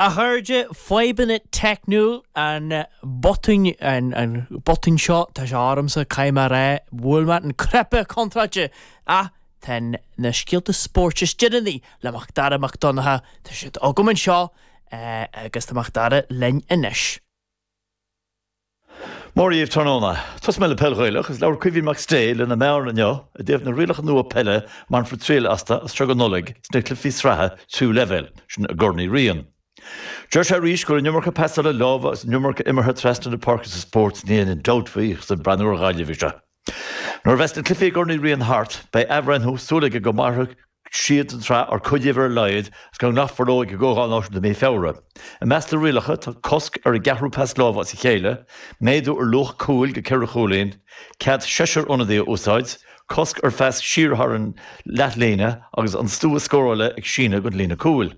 A chairde, fadhbanna teicniúil an botún, botún seo, tá sé ormsa, caithfidh mé a rá, bhuail mé an cnaipe contráilte, ach tá na scéalta spóirt is déanaí le Mac Dara Mac Donncha, tá siad agam anseo, agus tá Mac Dara linn anois. Mora daoibh tráthnóna. Tosóidh mé le peil Ghaelach agus labhair Caoimhín McStay lena meáin inniu i dtaobh na rialacha nua peile a mbainfear triail astu as seo go Nollaig sna cluichí sraithe tríú leibhéal, sin i gCorn Uí Riain. Deir sé arís go raibh an iomarca pasála láimhe agus an iomarca imeartha trasna na páirce sa spórt, níl aon dabht faoi, ach is ag breathnú ar Ghaillimh í seo. Nuair a bheas na cluifí i gCorn Uí Riain thart, beidh athbhreithniú súil aige go mairfidh siad don tsraith nó cuid díobh ar a laghad agus go nglacfar leo ag Comhdháil Náisiúnta mí Feabhra. I measc na rialacha tá cosc ar an gceathrú pas láimhe as a chéile, méadú ar luach cúil go ceithre chúilín, cead seisear ionadaí a úsáid, cosc ar phas siar thar an leathlíne agus an stua scórála ag síneadh go dtí an líne cúil.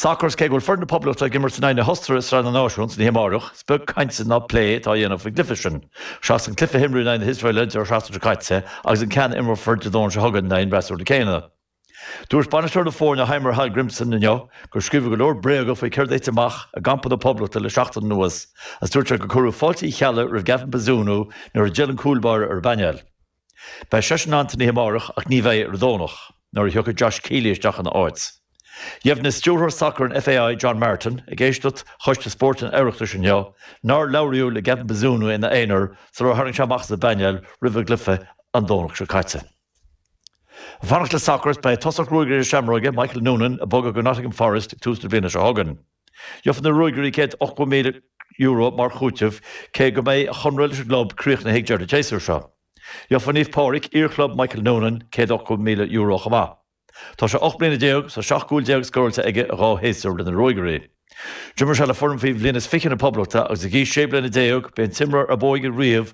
Sacar, is cé go bhfuil foireann na Poblachta ag imirt in aghaidh na hOstaire i Sraith na Náisiún san oíche amárach, is beag cainte ná plé atá á dhéanamh faoin gcluiche sin. Seachas an cluiche a imríodh in aghaidh na hIosraeile an deireadh seachtaine seo caite agus an ceann a imreofar Dé Domhnaigh seo chugainn in aghaidh an fhreasúra céanna, dúirt bainisteoir na foirne Heimir Hallgrimsson inniu gur scríobhadh go leor bréaga faoi céard a thit amach i gcampa na Poblachta le seachtain anuas agus dúirt sé gur cuireadh fáilte Uí Cheallaigh roimh Gavin Bazunu nuair a d'fhill an cúlbáire ar an bpainéal. Beidh seisean ann san oíche amárach ach ní bheidh ar an Domhnach, nuair a thiocfaidh Josh Keeley isteach ina áit. Dheimhnigh stiúrthóir sacair an FAI, John Martin, ag éisteacht Choiste Spóirt an Oireachtais inniu nár labhraíodh le Gavin Bazunu ina aonar sular tharraing sé amach as an bpainéal roimh an gcluiche an Domhnach seo caite. Ag fanacht le sacar, beidh tosach Ruagairí na Seamróige, Michael Noonan, ag bogadh go Nottingham Forest ag tús na bliana seo chugainn. Gheobhaidh na Ruagairí céad ochto míle Euro mar chúiteamh, cé go mbeidh a chonradh leis an gclub críochnaithe ag deireadh an tséasúir seo. Gheobhaidh Naomh Pádraig, iar-chlub Michael Noonan, céad ochto míle Euro chomh maith. Tá sé ocht mbliana déag, tá seacht gcúl déag scóráilte aige i dhá shéasúr le na Ruagairí. D'imir sé le foireann faoi bhliain is fiche na Poblachta agus ag aois sé bliana déag b'é an t-imreoir ab óige riamh